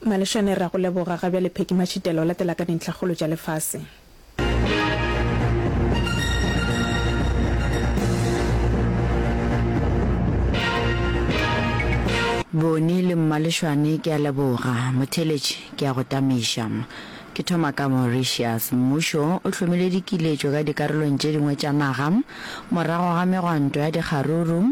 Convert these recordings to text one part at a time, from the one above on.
Malešane, Re a go leboga. Ga bjale Pheki Mashitela o latela ka dintlhakgolo tša lefase. Boni le Mmalešwane, Ke a leboga. Motheeletši, Ke a go tamiša. Ke thoma ka Mauritius. Mmušo o hlomile dikiletšo ka dikarolong tše dingwe tša naga morago ga megwanto ya dikgaruru.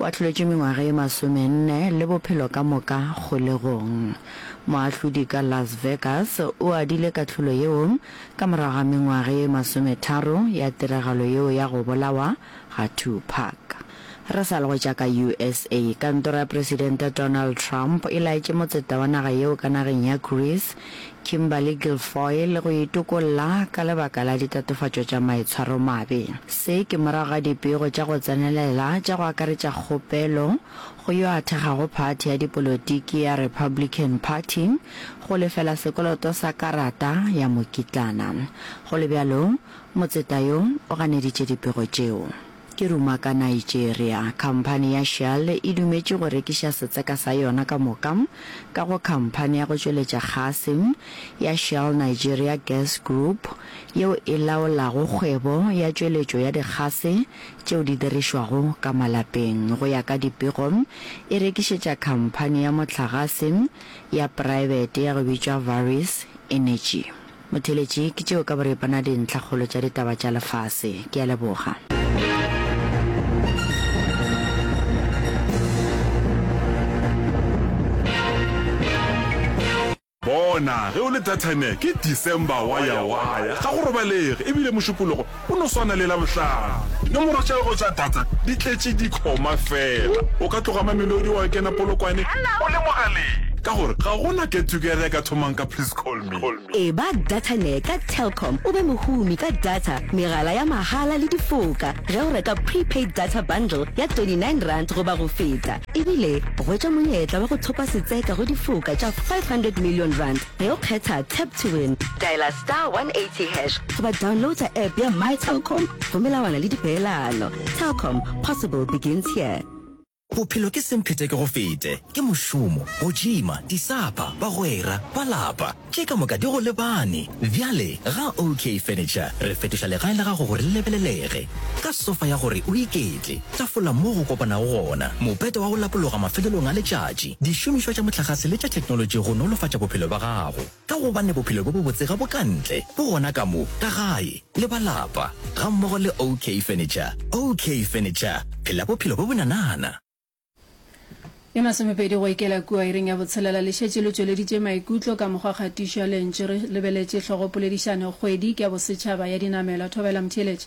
O ahloletše mengwaga ye masomenne le bophelo ka moka kgolegong. Moahlodi ka Las Vegas o adile kahlolo yeo ka morago ga mengwaga ye masometharo ya tiragalo yeo ya go bolawa ga Tupac. Re sa le go tša ka usa, kantoro ya Presidente Donald Trump e laetše motseta wa naga yeo ka nageng ya Greece Kimberly Guilfoyle le go itokolla ka lebaka la ditatofatšo tša maitshwaromabe. Se ke morago ga dipego tša go tsenelela tša go akaretša kgopelo go yo a thekgago phathi ya dipolotiki ya Republican Party go lefela sekoloto sa karata ya mokitlana. Go le bjalo, motseta yo o ganeditše dipego tšeo. Ke ruma ka Nigeria. Khamphani ya Shell e dumetše go rekiša setseka sa yona ka moka ka go khamphani ya go tšweletša kgase ya Shell Nigeria Gas Group yeo e laolago kgwebo ya tšweletšo ya dikgase tšeo di dirišwago ka malapeng. Go ya ka dipego, e rekišetša khamphani ya mohlagase ya praebete ya go bitšwa Varys Energy. Motheletši, ke tšeo ka boripana dintlhakgolo tša ditaba tša lefase. Ke a leboga. Bona, ge o le Datane, ke December wa ya, wa ya. Ga go robalege, e bile Mošupologo. Go no swana le Labohlano. Dinomoro tša gago tša data di tletše dikhoma fela. O ka tloga Mamelodi wa kena Polokwane o le mogaleng ka gore ga go na get-together e ka thomang ka Please Call Me. Eba DataNet ka Telkom o be mohumi ka data, megala ya mahala le difoka ge o reka prepaid data bundle ya R29 goba go feta. Ebile hwetša monyetla wa go thopa setseka go difoka tša R500 million. Ge o kgetha Tap to Win, dialer star 180 hash goba downloada app ya My Telkom go melawana le dipeelano. Telkom, possible begins here. Bophelo ke semphetekegofete, ke mošomo, go tšhima, disapa, bagwera, ba lapa, tše ka moka di go lebane. Bjale ga OK Furniture re fetoša legae la gago gore le lebelelege ka sofa ya gore o iketle, Tafola moo go kopanago gona, mopete wa go lapologa mafelelong a letšatši, dišomišwa tša mohlagase le tša theknolotši go nolofatša bophelo bja gago. Ka gobane bophelo bjo bobotse ga bo ka ntle, bo gona ka mo, ka gae, le ba lapa, gammogo le OK Furniture. OK Furniture, phela bophelo bjo bonanana. Ye masomepedi go ikela kua iring ya botshelela le šetše le tšweleditše maikutlo ka mokgwa kgatišo ya lentšu re lebeletše hlogopoledišano Kgwedi ke ya Bosetšhaba ya Dinamelwa. Thobela Mtheeletša.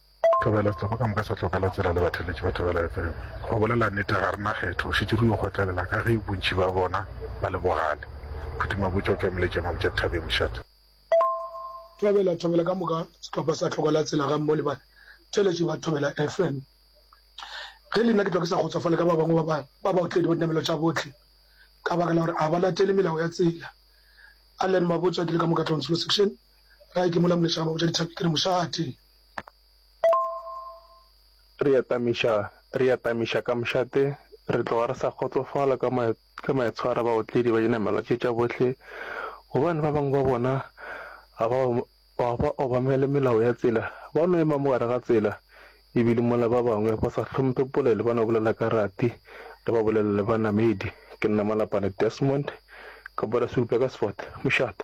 Thobela Setsoko ka moka sa tlogela tsela le batheletši ba Thobela FM. Go bolela nete ga re na kgetho, go šetše re yo kgotlelela ka ge bontši ba bona ba le bogale. Phuti Mabotja o tšwamile tše Mabotja Dithabeng mošate. Thobela Thobela ka moka sehlopha sa tlogela tsela ga mmo le ba theletši ba Thobela FM. Ge le nna ke tlwa ke sa kgotsofale ka ba bangwe ba ba ba baotledi ba dinamelo tša bohle ka baka la gore a ba latele melao ya tsela. Allan Mabotja ke le ka moka Tlonslo section gae ke mola Molechana Mabotja Dithabeng ke re mošate. Re atamiša, re atamiša ka mošate, re tloga re sa kgotsofala ka ma, ka maitshwaro a baotledi ba dinamelwa tše tša bohle, gobane ba bangwe ba bona ga ba, ga ba obamele melao ya tsela, ba no ema mo gare ga tsela, ebile mola ba bangwe ba sa hlomphe polelo ba no bolela ka rati, re ba bolelele banamedi. Ke nna Malapane Desmond, ka Boraserupe ka Sefate. Mošate.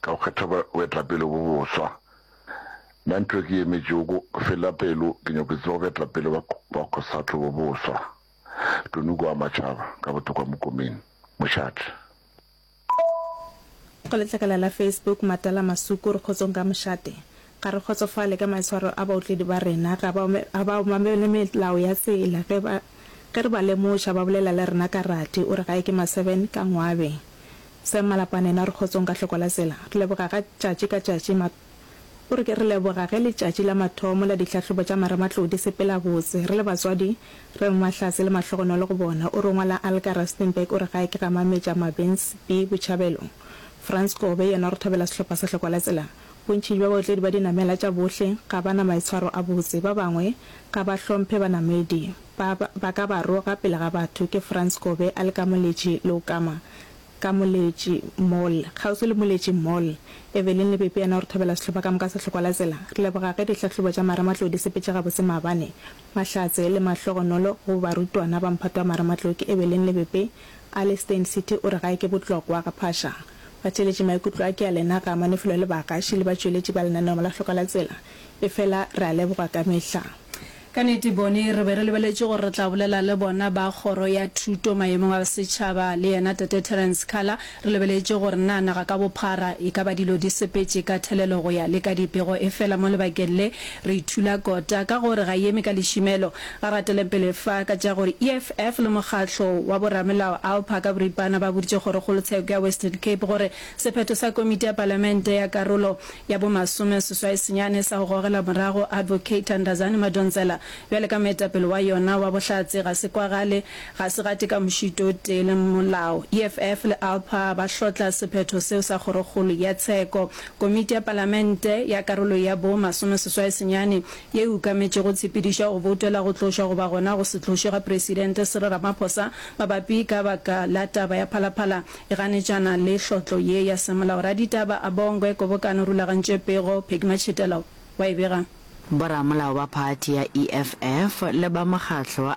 Ka go kgetha boetapele bo boswa, na ntwe ke yemetšego go fela pelo ke nyoko tseba boetapele ba Cosatu bo boswa? Tony Goa Matšhaba, ka botokwa Mokomeni, Mošate. Go letlakala la Facebook, Matala Masuku, Re kgotsong ka Mošate. Ga re kgotsofale ka maitshwaro a baotledi ba rena. Ga ba, ga ba obamele melao ya tsela. Ge ba, ge re ba lemoša, ba bolela le rena ka rati. O re gae ke ma-seven ka ngwabe. Sam Malapane yena o re kgotsong ka hloko la tsela. Re leboga ga tšatši ka tšatši ma, o re ke re leboga ge letšatši la mathomo la dihlahlobo tša marematlou di sepela botse. Re le batswadi, re re mahlatse le mahlogonolo go bona. O re o ngwala Alka Rustenburg, o re gae ke ga Mametša Mabens B. Botšhabelo. Frans Kobe yena o re thabela sehlopha sa hloko la tsela. Bontši bja baotledi ba dinamela tša bohle ga ba na maitshwaro a botse. Ba bangwe ga ba hlomphe banamedi. Ba, ba ka ba roga pele ga batho. Ke Frans Kobe a le ka Moletši Leokama, ka Moletši Mall, kgauswi le Moletši Mall. Evelyn le Pepe yena o re thobela sehlopha ka moka sa Tlhokwalatsela. Re leboga ge dihlahlobo tša Marematlou di sepetše gabotse maabane, mahlatse le mahlogonolo go barutwana ba mphato wa Marematlou. Ke Evelyn le Pepe a le Steyn City o re gae ke botlokwa ga phaša. Batšeletši maikutlo a ke a lena ga amane felo le baagaši le batšweletši ba lenaneo la Hloka la Tsela, efela re a leboga ka mehla. Ka nnete bone re be re lebeletše gore re tla bolela le bona ba Kgoro ya Thuto Maemong a Setšhaba le yena Tate Terrence Kala, re lebeletše gore na naga ka bophara e ka ba dilo di sepetše ka thelelo go ya le ka dipego efela mo lebakeng le re ithula kota ka gore ga e eme ka lešimelo A gatele pele fa ka tša gore EFF le mokgatlo wa boramelao ALPA ka boripana ba boditše kgorokgolotsheko ya Western Cape gore sephetho sa komiti ya palamente ya karolo ya bomasome seswai senyane sa go gogela morago Advocate Thandazani Madonsela bjale ka moetapele wa yona wa bohlatse ga se kwagale ga se gate ka mošito o tee le molao. EFF le ALPA ba hlotla sephetho seo sa kgorokgolo ya tsheko. Komiti ya palamente ya karolo ya bo masome seswai senyane ye e ukametšego tshepedišo ya go boutela go tlošwa goba gona go se tlošwe ga Presidente Cyril Ramaphosa mabapi ka baka la taba ya Phalaphala e ganetšana le hlotlo ye ya semolao. Raditaba Abongwe, Kobokano rulagantšwe pego, Peggy Matshetela wa e bega. Boramolao ba phathi ya EFF le ba mokgatlo wa.